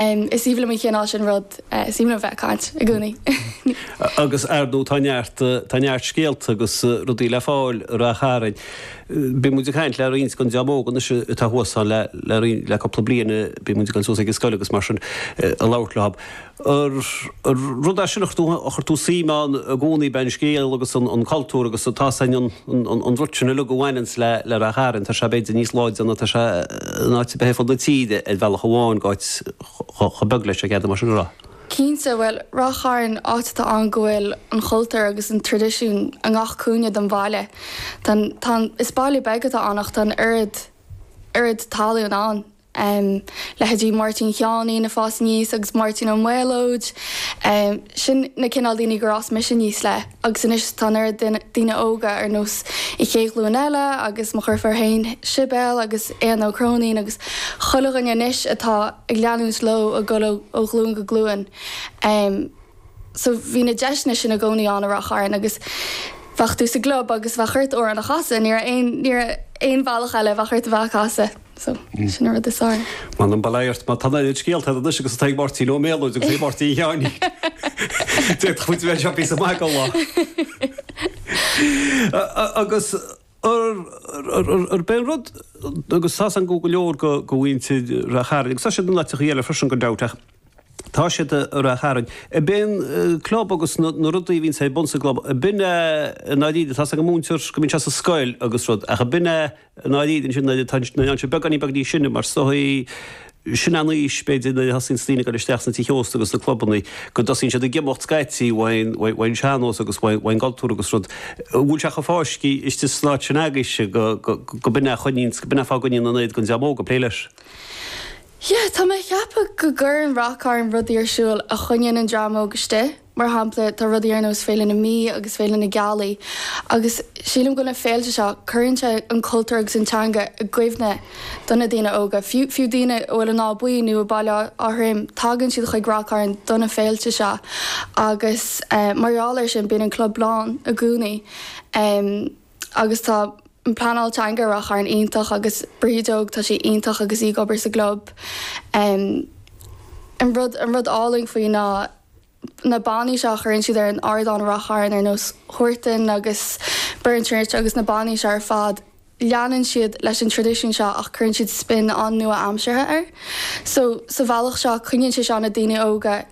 Is aoibhinn liom an cineál sin rud, is aoibhinn liom bheith ag caint i gcónaí. Agus ar ndóigh tá neart, tá neart scéalta agus rudaí le fáil i Rath Chairn. Bíonn muid ag caint le roinnt den dream óg anois atá thuas ann le, le roinnt, le cúpla bliain, bíonn muid ag dul suas ag an scoil agus mar sin ag labhairt leo. An rud as sin a chuir tú, a chuir tú suim ann i gcónaí, beidh an scéal agus an, an cultúr agus tá a fhios a'm, an. an rud sin uilig a bhaineanns le le Ráth Chairn, tá sé b'fhéidir níos láidre ná tá sé in áit ar bith ar fud na tíre ar bhealach amháin, áit chomh beag leis, a d'fhéadfadh mar sin a rá. Cinnte, bhuel, Ráth Chairn, áit atá ann go bhfuil an chultúr agus an traidisiún i ngach cúinne den bhaile. Tá an, is baile beag atá ann ach tá an oiread, oiread tallann ann um, leithéidí Máirtín Sheáinín a' fás aníos agus Máirtín Ó Méalóid, um, sin na cineál daoine gur fhás mise aníos le agus anois tá an oiread duine, daoine óga ar nós an chéad ghlúin eile agus mo dheirfiúr féin, Sibéal agus Éanna Ó Cróinín agus chuile dhuine anois atá ag leanúint leo ag dul ó, ó ghlúin go glúin. Um, so bhí na deiseanna sin i gcónaí ann i Ráth Chairn agus bheadh tú sa gclub agus bheadh ort amhrán a chasadh, ní raibh aon, ní raibh aon bhealach eile, bheadh ort a bheith a' casadh. So, sin an rud is áille. M'anam ba laghairt, mar tá an oiread scéalta ar anois agus atá ag Máirtín Ó Méalóid agus ag Máirtín Sheáinín. D'fhéadfadh muid a bheith anseo píosa maith den lá. Agus ar b'é an rud, agus tá a fhios a'm go leor de mhuintir Ráth Chairn, agus tá siad in áiteachaí eile freisin go deimhin, ach tá siad i Ráth Chairn, ar b'é an club agus na rudaí a bhíonns ar bun sa gclub, ar b'in é, ná líne, tá a fhios a'm go múintear go mbíonn sé sa scoil agus rud, ach ar b'in é I ndáiríre ansin, nuair atá sé beagáinín beag níos sine, mar is dóichí, sin an aois, b'fhéidir, nuair a thosaíonn daoine ag dul isteach sna tithe ósta agus sna clubanna, go dtosaíonn siad ag imeacht scaití ón sean-nós agus ón gcultúr agus rud. An bhfuil sé chomh fáiscthe istigh san áit sin agaibhse go b'in é a choinníonns, go b'in é fáth a gcoinníonn an oiread den dream óg ag plé leis? Yeah, tá mé ag ceapadh go gcuireann Rath Cairn rudaí ar siúl a choinníonn an dream óg istigh. Mar shampla, tá rudaí ar nós Féile na Mí agus Féile na Gealaí agus sílim go na féilte seo, cuireann sé an cultúr agus an teanga i gcuimhne do na daoine óga. Fiú fiú daoine a bhfuil i nÁth Buí nó i Baile Átha Throim, tagann siad chuig Rath Cairn do na féilte seo agus mar gheall ar sin, bíonn an club lán i gcónaí. agus tá an pleanáil teanga i Ráth Chairn iontach agus Bríd Óg tá sí iontach agus í ag obair sa gclub. An rud an rud álainn faoi ná na bannaí seo a chuireann siad ar an ardán i Ráth Chairn ar nós Huartan agus Burnchurch agus na bannaí seo ar fad leanann siad leis an traidisiún seo ach cuireann siad spin an-nua-aimseartha air so sa bhealach seo coinníonn sé seo na daoine óga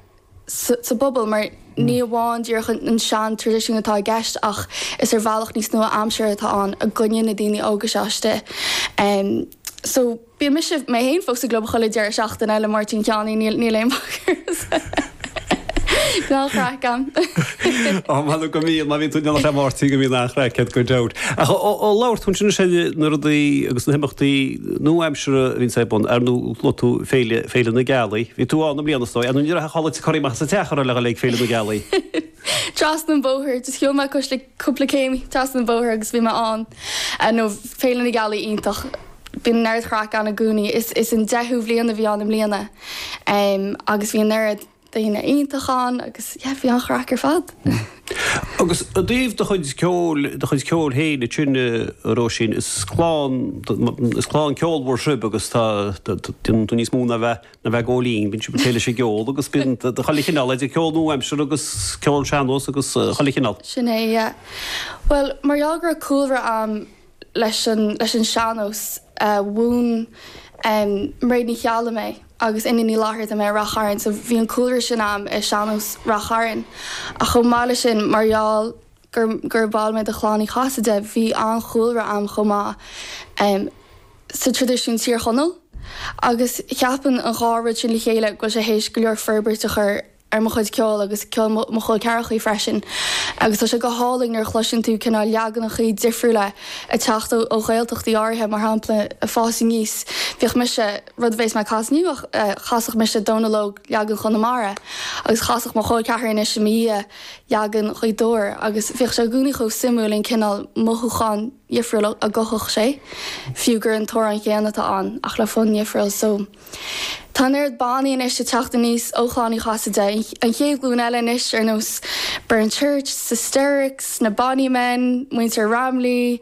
sa bpobal, mar ní amháin díreach an sean-traidisiún atá i gceist ach is ar bhealach níos nua-aimseartha atá ann a gcoinníonn na daoine óga seo istigh. So, bíonn mise, mé féin fós sa gClub chuile deireadh seachtaine le Máirtín Sheáinín, níl, níl aon bacadh. Tá an-chraic a'm. Ó, mh'anam go mbíonn, má bhíonn tú ag déanamh le Máirtín go mbíonn an-chraic a'd, go deimhin. Ach ó labhair tú ansin, is é na rudaí agus na himeachtaí, nua-aimseartha a bhíonns ar bun, ar ndú, luaigh tú Féile, Féile na Gealaí. Bhí tú ann i mbliana, is dóigh. Ar ndú, ní raibh a chodladh te curtha amach as an teach ar le ghoil ag Féile na Gealaí. Trasna an bóthar, just shiúl mé cois like cúpla céim trasna an bhóthair agus bhí mé ann. Eh no, Féile na Gealaí iontach. Bíonn an oiread chraic ann i gcónaí. Is is an deichiú bhliain a bhí ann i mbliana. Em, agus bhí an oiread. daoine iontach ann agus yeah bhí an-chraic ar fad. Agus i dtaobh do chuid ceoil, do chuid ceoil féin ansin a Róisín, is clann, is clann ceolmhar sibh agus tá, déanann tú níos mó ná a bheith, ná a bheith ag gabháil fhoinn, bíonn sibh ag plé leis an gceol agus bíonn chuile chineál idir ceol nua-aimseartha agus ceol sean-nós agus chuile chineál. Sin é, yeah. Bhuel, mar gheall go raibh cúlra a'm leis an sean-nós a mhúin Mairéad Ní Cheallaigh mé agus Úna Ní Fhlatharta mé i Rath Chairn so bhí an cúlra sin a'm i sean-nós Rath Chairn ach chomh maith leis sin mar gheall gur bhall mé de chlann Uí Chasaide bhí an-chúlra a'm chomh maith sa traidisiún Tír Chonaill agus cheapfainn an dhá rud sin le chéile go bhfuil sé th'éis go leor forbairt a chur ar mo chuid ceoil agus ceol mo chol ceathrachaí freisin agus tá sé go hálainn nuair a chloiseann tú cineál leaganachaí difriúla ag teacht ó Ghaeltachtaí áirithe mar shampla ag fás aníos bhíodh mise, rud a bhéas mé a chasadh inniu, chasadh mise Dónal Óg leagan Chonamara agus chasadh mo chol ceathrair anois i mo dhiaidh leagan Ghaoth Dobhair agus bhíodh sé i gcónaí chomh suimiúil an cineál mothúchán dhifriúil a gcothódh sé fiú gur an t-amhrán chéanna atá ann ach le fonn dhifriúil so Tá an oiread bannaí anois ag teacht aníos ó Chlann Uí Chasaide, an chéad ghlúin eile anois, ar nós Burnchurch, Sisterix, Na Bonny Men, Muintir Ramley,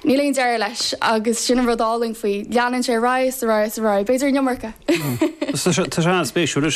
níl aon deireadh leis agus sin an rud álainn faoi, leanann sé ar aghaidh is ar aghaidh is ar aghaidh, b'fhéidir an iomarca! Tá sé an-spéisiúil.